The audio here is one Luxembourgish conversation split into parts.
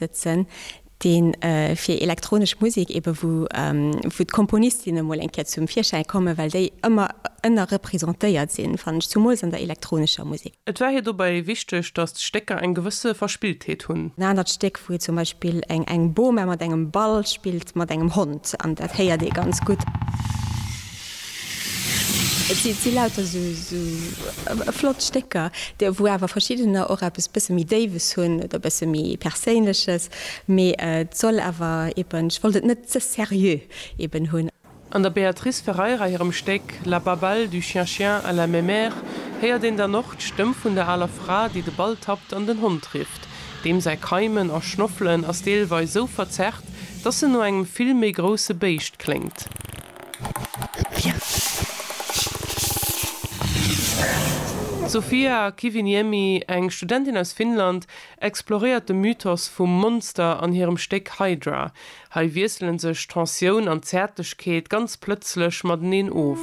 sëtzen, dee fir elektronesch Musek ebe wou d'Komponistinne mol eng Kéier zum Virschäi kommen, well déi ëmmer ënnerrepresentéiert sinn, fannen ech, zumools an der elektronescher Musek. Et war hir dobäi wichteg, datt d'Stécker eng gewësse Verspilltheet hunn. En anert Stéck, wou zum Beispill eng Boma mat engem Ball spillt mat engem Hond, an dat héiert ee ganz gutt. Et si lauter esou flott Stécker, déi, wou awer verschiddener och eppes e bësse méi Déiwes hunn oder e bësse méi Perséinleches. Mee et soll awer eben, ech wollt et net ze seriö eben hunn. An der Beatrice Ferreira hirem Stéck La babale du chien-chien à la mémère héiert een dann och d'Stëmm vun der aler Fra, déi de Ball tappt an den Hond rifft. Deem säi Keimen a Schnoffelen ass deelweis esou verzerrt, dass en no engem vill méi grousse Béischt kléngt. D'Sofia Kiviniemi, eng Studentin aus Finnland, exploréiert de Mythos vum Monster an hirem Stéck Hydra. Hei wiesselen sech Tensioun an Zäertlechkeet ganz plëtzlech mateneen of.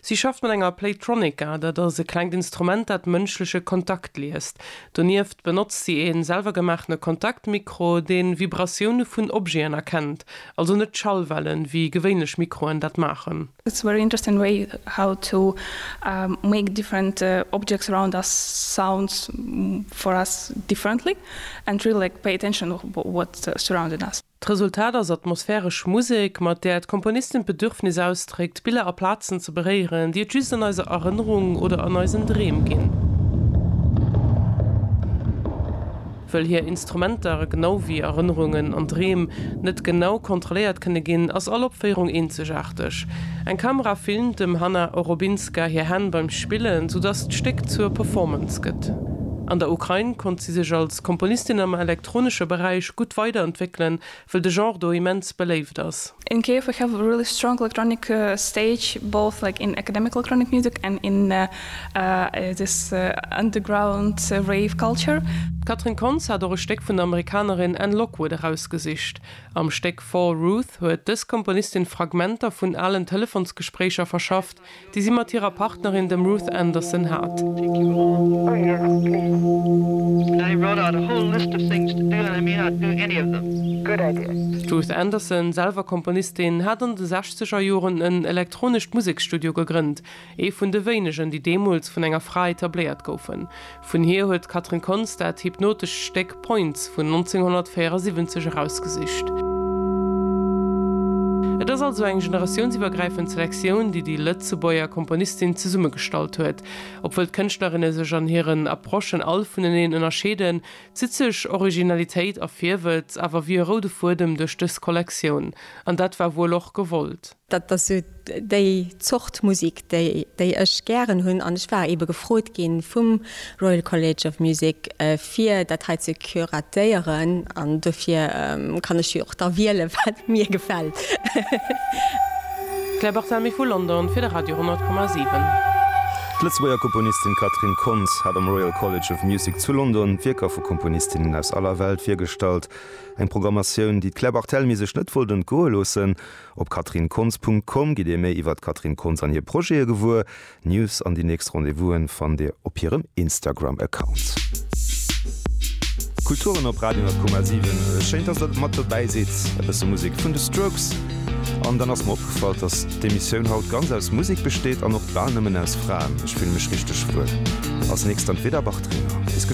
Si schafft mat enger Playtronica, dat ass e klengt Instrument, dat mënschleche Kontakt liest. Donieft benotzt si ee selwergemaachene Kontaktmikro, dee Vibratioune vun Objeten erkennt, also net Schallwellen, wéi gewéinlech Mikroen dat maachen. It's very interesting way how to make different objects around us sounds for us differently and really like pay attention what surrounded us. D'Resultat ass atmosphäresch Musek, mat där d'Komponistin d'Bedürfnis ausdréckt, Biller a Plazen ze beréieren, déi et just an eiser Erënnerung oder an eisen Dreem ginn. Wëll hir Instrumenter, genau wéi Erënnerungen an Dreem, net genau kontrolléiert kënne ginn, ass all Opféierung eenzegaarteg. Eng Kamera filmt dem Hanna Orobinska hir Hänn beim Spillen, soudatt d'Stéck zur Performance gëtt. An der Ukrain konnt si sech als Komponistin am. elektronesche Beräich gutt weiderentwéckelen, wëll de Genre do immens beléift ass. In Kiev we have a really strong electronic stage, both like in academic electronic music and in this underground rave culture. D'Catherine Kontz hat och e Stéck vun der Amerikanerin Anne Lockwood erausgesicht. Am Stéck Fall Ruth huet dës Komponistin Fragmenter vun alen Telefonsgespréicher verschafft, déi si mat hirer Partnerin, dem Ruth Anderson, hat. D'Ruth Anderson, selwer Komponistin, hat an de sechzeger Joren en elektronescht Museksstudio gegrënnt, ee vun de wéinegen, déi deemools vun enger Fra etabléiert goufen. Vun hir huet d'Catherine Kontz dat hypnotescht Stéck Points vun 1974 erausgesicht. Et ass also eng generatiounsiwwergräifend Selektioun, déi déi Lëtzebuerger Komponistin zesummegestallt huet. Obwuel d'Kënschtlerinne sech an hiren Approchen all vuneneen ënnerscheeden, zitt sech Originalitéit a Virwëtz awer wéi e roude Fuedem duerch dës Kollektioun. An dat war wuel och gewollt. Dat ass esou déi Zort Musik, déi ech gären hunn. An ech war eebe gefrot ginn vum Royal College of Music, fir dat hei ze curatéieren. An dofir kann ech jo och da wiele wat mir gefält. Claire Barthelmy vu London fir de Radio 10,7. D'Lëtzebuerger Komponistin Catherine Kontz hat am Royal College of Music zu London Wierker vu Komponistinnen aus aller Welt virgestallt. Eng Programmatioun, déi d'Claire Barthelmy sech net wollt entgoe loossen, Op catherinekontz.com gitt dir méi iwwer d'Catherine Kontz an hir Projete gewuer. D'News an déi nächst Rendez-vouse fannt dir op hirem Instagram-Account. Kulturen op Radio 10,7. Schéin dass der mat dobäi sidd. E bësse Musek vun de Strokes an dann ass mer opgefall, dass d'Emissioun haut ganz aus Musek besteet an och bal nëmmen aus Fraen. Ech fillen mech richteg wuel als nächst an d'Veda Bartrina. Bis geschwënn.